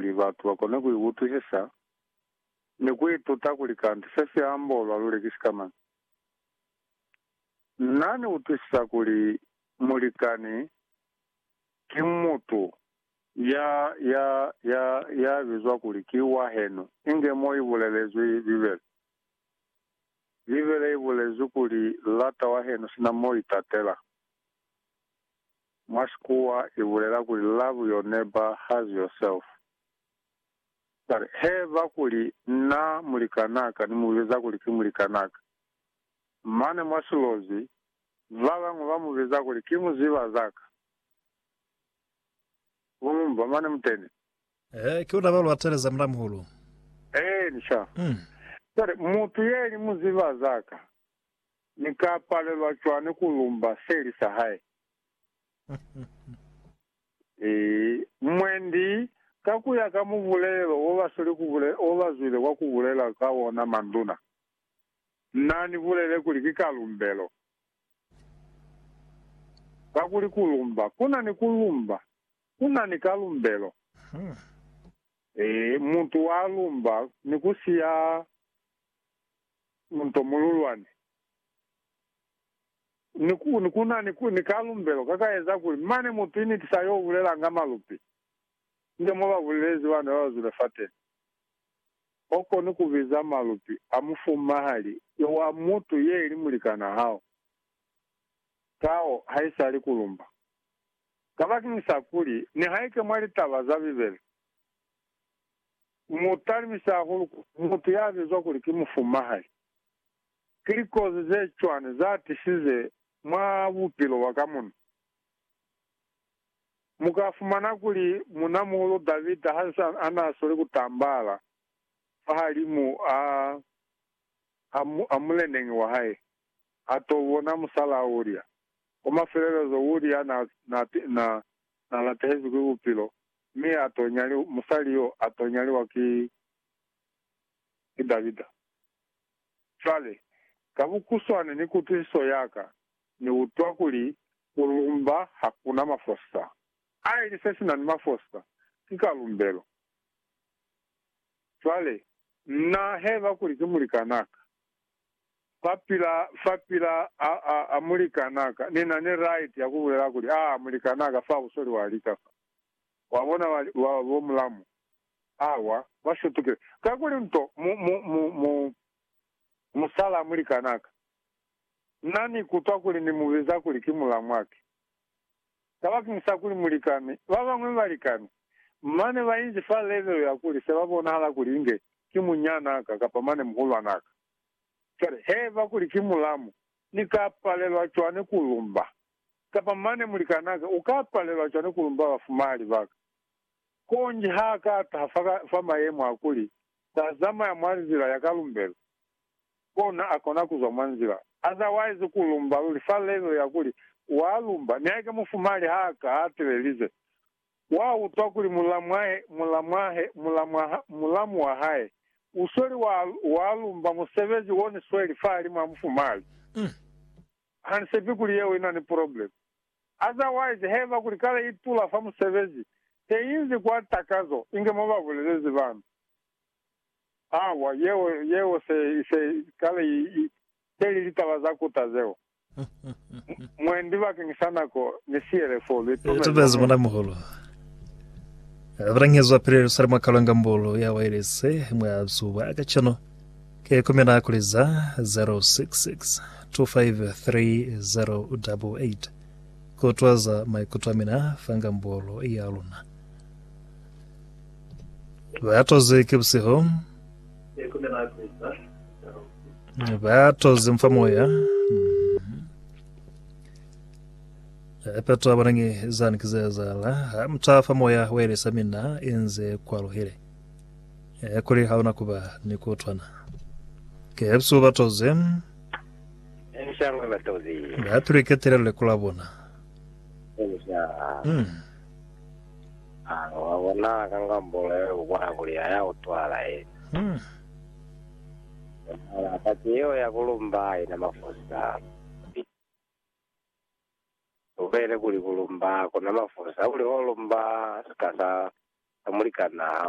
kuli batu ba kone ku iutwisisa ni ku ituta kuli kanti se si ambolwa luli ki sikamañi. Na ni utwisisa kuli mulikani ki mutu ya, ya, ya, ya bizwa kuli ki wahenu, inge mo i bulelezwi Bibele. Bibele i bulezwi kuli, Lata wahenu sina mo itatela. Mwa Xikhuwa i bulela kuli love your neighbor has yourself. But he ba kuli, Na mulikanaka, ni mu biza kuli ki mulikanaka. Mane mwa Silozi, ba bañwi ba mu biza kuli ki muziba zaka. Mba mane muteni. He, ki ona ba lu ateleza Mulamuhulu. Eeni, sha. Cwale, mutu ye li muziba zaka, Ni ka palelwa cwani ku lumba seli sa hae? Ii, Mwendi, ka ku ya ka mubulelo wo ba sweli ku bule, wo ba zwile kwa ku bulela ka ona manduna, Na ni bulele kuli ki ka lumbelo. Kakuli ku lumba, ku na ni ku lumba, ku na ni ka lumbelo. Ii, Mutu wa lumba ni ku siya nto mululwani. Ni ku, ni ku na ni, ku, ni kalumbelo ka ka eza kuli mane mutu initisa yo bulelanga malupi, nge mo ba bulelezi bana ba ba zwile fateni. O koni ku biza malupi a mufumahali yo wa mutu ye ili mulikan'a hao. Kao ha isali ku lumba. Kabakeñisa kuli, nihaike mwa litaba za Bibele, Mu talimisi hahulu ku mutu ya bizwa kuli ki mufumahali. Ki likozi ze cwani za tisize mwa bupilo bwa ka muno? Mu ka fumana kuli Muuna-muhulu Davida ha nsi a n'a sweli ku tambahala fahalimu a ha muleneñi wa hae, a t'o bona musal'a Uria. Kwa mafelelezo, Uria n'a na latehezwi ki bupilo, mi a to nyaliwa, musali yo a to nyaliwa ki, ki Davida. Cwale, ka bukuswane ni kutwisiso ya ka, Ni utwa kuli ku lumba ha ku na mafosa. A ili se si na ni mafosa, ki kalumbelo. Cwale, na heba kuli ki mulikanaka. Fa pila, fa pila, a, a, a mulikan'a ka. Ni na ni right ya ku bulela kuli, A, a mulikan'a ka, fa busoli wa lika fa. Wa bona, wa, wa, bo mulamu. A, wa, wa setukile. Kakuli nto, mu, mu, mu, mu, musala a mulikan'a ka. Na ni kutwa kuli ni mu biza kuli ki mulamu'a ki. Kabakeng sa kuli mulikami, babañwi balikami, mane bainzi fa level ya kuli se babonahala kuli inge ki munyana ka kapa mane muhulwana ka. Cwale, haiba kuli ki mulamu, ni ka palelwa cwani ku lumba? Kapa mane mulikana ka uka palelwa cwani ku lumba bafumahali baka? Konji ha ka taha fa mayemo a kuli sa zamaya mwa nzila ya kalumbelo, kona akona kuzwa mwa nzila. Otherwise ku lumba luli fa level ya kuli wa lumba ni haike mufumali ha ka a telelize wa utwa kuli mulamwahe, mulamwahe, mulamwaha, mulamu wa hae u sweli wa, wa lumba musebezi o ni sweli fahalimu ha mufumali. Ha ni sepi kuli yeo ina ni problem. Otherwise heba kuli kale i tula fa musebezi te inzi kwa takazo inge mo ba bulelezi bana. Hawa, yeo, yeo se, se kale i, i, teli litaba za kuta zeo. M, mwendi bakeng sa nako, ni siyele fo, lu itumezi Itumezi, mona. Mona-muhulu. A balangezwa pili Yerusalema ka lwanga mbulu ya wailese mwa zuba kacenu. Ki kumina kuli za 0662530088 ku twaza maikuto a mina fanga mbulu ya luna. Ba toze ki busihu. Ba toze mfa moya. Epetwa banangi zani kizezala. Ha mtafa moya welesa mina inze kwa luhile. E kuli hauna kuba ni kutwana. Ke busihu ba toze. Enshangwe ba toze. Ba piriketele lekula bona. Ensha. Mm. Hanga wa bonala ka ngambolo ya ku bona kuli ha ya utwala yena. Bonala paki yeo ya ku lumba haina mafusa a bubi. Lu boile kuli ku lumba ku na mafusa kuli ho lumba sika sa mulikanaa hao.